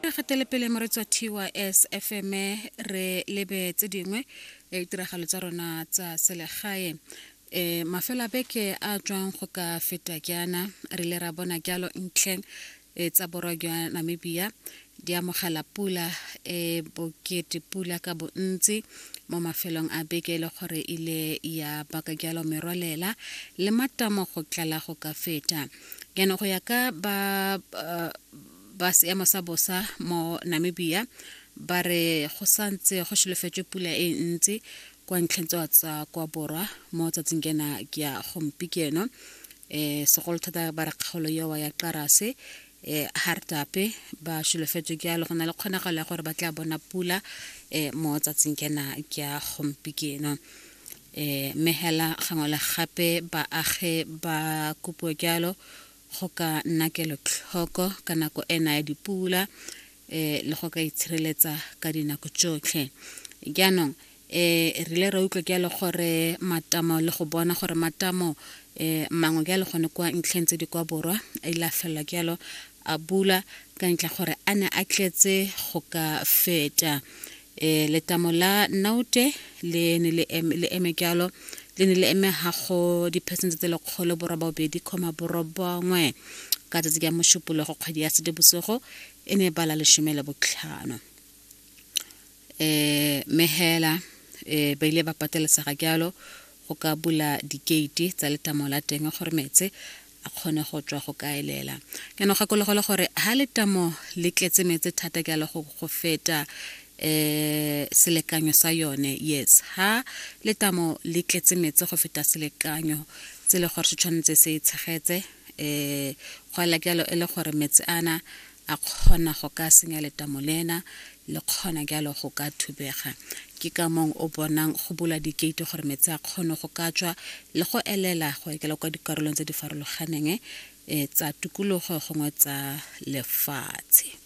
re fetele pele mo re tswa tys fm re lebe tse dingwe e, ditiragalo tsa rona tsa selegae um mafelo a beke a tswang go ka feta jaana re ile ra bona jalo ntlheng e, tsa borwa jwa namibia di amogela pula e bokete pula ka bontsi mo mafelong a beke e le gore ile ya baka jalo merwalela le matamo go tlala go ka feta jaanong go ya ka ba ba seemo sa bosa mo namibia ba re go santse go solofetswe pula e ntsi kwa ntlheng tsewa tsa kwa borwa mo tsatsing kena ke ya gompieno um segolo thata ba re kgaolo ewa ya qarase um hartape ba solofetswe ke yalo go na le kgonagalo ya gore ba tla bona pula um mo tsatsing kena ke ya gompieno E, mme hela gangwe le gape baagi ba kopiwa jalo go ka nna kelotlhoko ka nako ena ya dipula e, le go ka itshireletsa ka dinako tsotlhe jaanong e rile ra utlwa jalo gore matamo le go bona gore matamo e mangwe jalo gone kwa ntlheng tse di kwa borwa a ile a felela jalo a bula ka ntle gore a ne a tletse go ka feta e letamo la naute le ne le eme jalo le ne le eme gago diphesente tse lekgolo borobabedi kgoma borobongwe ka tsatsi ka mošupologo kgwedi ya sedibosigo e ne e bala lesome le botlhano eh, mehela eh, ba ile ba patelesega jalo go ka bula dikeiti tsa letamo la teng gore metse a kgone go tswa go kaelela ke no gakologo le gore ha letamo le tletse metse thata jalo go go feta eh selekanyo sa yone yes ha letamo le tletse metse go feta selekanyo tse le gore se tshwanetse se tshegetse eh go la jalo e le gore metse ana A kgona go ka senya letamo lena, le kgona jalo go ka thubega. Ke ka mong o bonang go bula dikeiti gore metsi a kgone go ka tswa le go elela go ekela kwa dikarolong tse di farologaneng eh, tsa tukulugo gongwe tsa lefatshe.